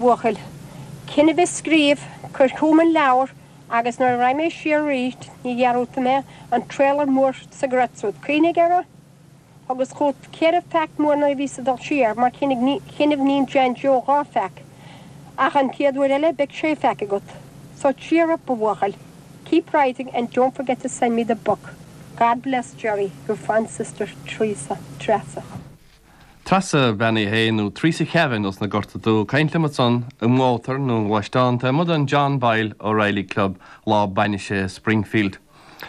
bhuachaill. Coinnibh ag scríobh, cuir chugam an leabhar agus nuair a raghaidh mé siar arís ní dhearúdfaidh mé an trailer mór sa gcreat súd. Cuimhnigh air. Thugas chugat ceithre pheac mór nuair a bhíos ag dul siar mar chuimhne, níl John Joe dhá pheac ach an chéad uair eile beidh sé pheac agat. So cheer up a bhuachaill. Keep writing and don't forget to send me the book. God bless Gerry, your fond sister Treasa. Treasa Bhean Uí Shé nó Theresa Kavanagh os na Gorta Dubh ag caint liom ansan in Óthar na nGluaisteán amuigh den John Boyle O'Reilly Club lá bainise i Springfield.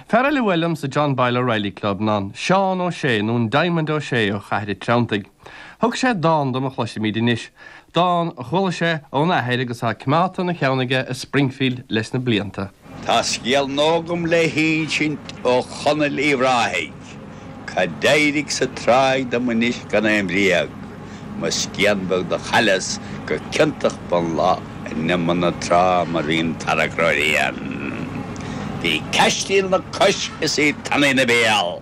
Fear eile a bhuail liom sa John Boyle O'Reilly Club ná an Seán Ó Sé nó an Diamond Ó Sé ó Chathair a' Treanntaigh. Thug sé dán dom a chloisfimid anois, dán a chuala sé óna athair agus atá coimeádta ina cheann aige i Springfield leis na blianta. Tá scéal nua agam le hinsint Uí Chonaill Uíbh Ráthaigh, Cad d'éirigh sa tráigh dom anois gan aon bhréag, Mo scian bheag do chailleas go ciontach bun lae In imeall na trá mar a mbíonn tarrac ar líon. Bhí caisdín 'na cois is í tanaí 'na béal,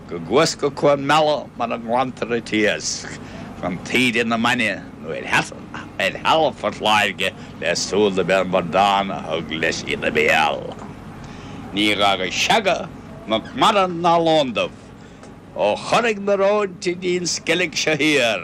go gcuas go Cuan Béarra mar a nglantar an t-iasc chun Tráigh na Mine nó ar thalamh Phort Láirge le súil go mb'é an bradán a thug leis í ina bhéal. Níor fhága seaga, muc mara ná lóndubh ó Thoraigh na rón go dtí an Sceilg seo thiar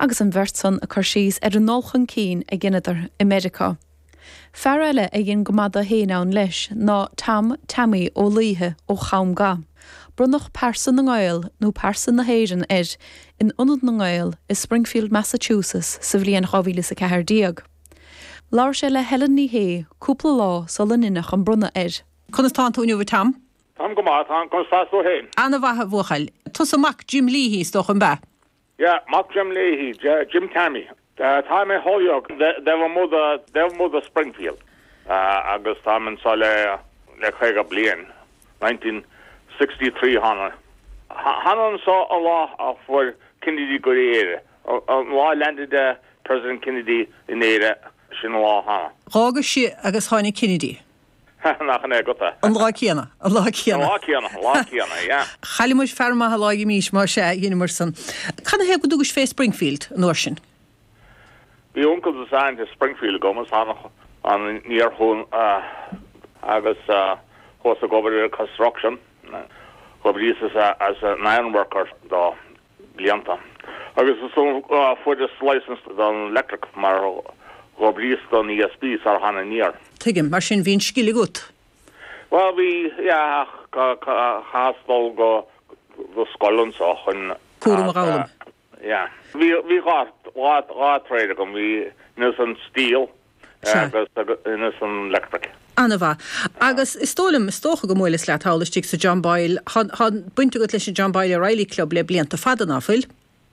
agus an bheirt san ag cur síos ar an ndul chun cinn a dheineadar i Meiriceá. Fear eile a dhein go maith do fhéin ann leis ná Tom Teaimí Ó Laoithe ó Chom Ga. Bronnadh Pearsa na nGael nó Pearsa na hÉireann air in Ionad na nGael i Springfield Massachusetts sa bhliain dhá mhíle is a ceathair déag. Labhair sé le Helen Ní Shé cúpla lá sular deineadh an bronnadh air. Conas tánn tú inniu a Tom? Táim go maith, ana-mhaith. Conas tá tú fhéin? Ana-mhaith a bhuachaill. Tusa mac Jim Leahy is dócha, ab ea? Yeah, mac Jim Leahy, Jim Tammy. Táim i Holyoke, taobh amuigh de Springfield, agus táim anseo le caoga bliain, nineteen sixty three thána. Thána anseo an lá a fuair Kennedy go Éire, an lá a landed President Kennedy in Éire, sin an lá a thána. D'fhágas-sa agus tháinig Kennedy. An ea? An lá céanna. An lá céanna. Lá céanna, lá céanna, ja. Chaill muid fear maith dá réir sin, má sea, dheineamar san. Cad ina thaobh go dtugais fé Springfield an uair sin? Bhí uncail is aint i Springfield agam, is thána aniar chucu agus chuas ag obair ar construction, dh'oibríos im ironworker dó. blianta agus is ann a fuaireas license don electric mar go bhíos don ESB sar thána aniar. Tuigim, mar sin bhí an scil agat. Bhuel bhí, yeah, ach chaitheas dul go go scoil anso chun cúram a dh'fhoghlaim. yeah. Bhí dhá dhá trade agam, bhí, ins an steel, Sea. agus ins an electric. Ana mhaith. Agus is dóigh liom, is dócha go mór leis, leat thall istigh sa John Boyle, tá, tá baint agat leis an John Boyle O'Reilly Club le blianta fada, ná fuil?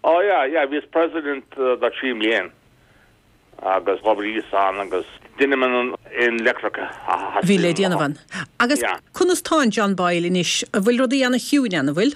Ó yeah, yeah, bhíos president dá trí mbliain agus dhóbair fhios ann agus deinim an aon electric a A bhí le theastaíonn. déanamh ann. Agus Yeah. conas tá an John Boyle anois? An bhfuil rudaí ana chiúin ann, an bhfuil?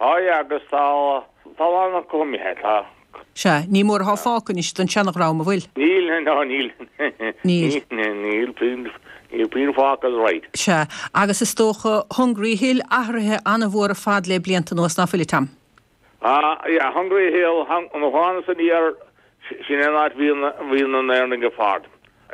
Aye agus tá talamh acu imithe, tá. Sea, ní mór athá fágtha anois don seanadhream, a' bhfuil? Níl, ná níl. Níl. Níl puinn, níl puinn fágtha right. Sea, agus is dócha Hungry Hill athruithe an-mhór ar fad le blianta anuas, ná fuil, a Tom? Á, yeah, Hungry Hill, an ceann san thiar, sin é an áit bhíodh na hÉireannaigh ag fágaint.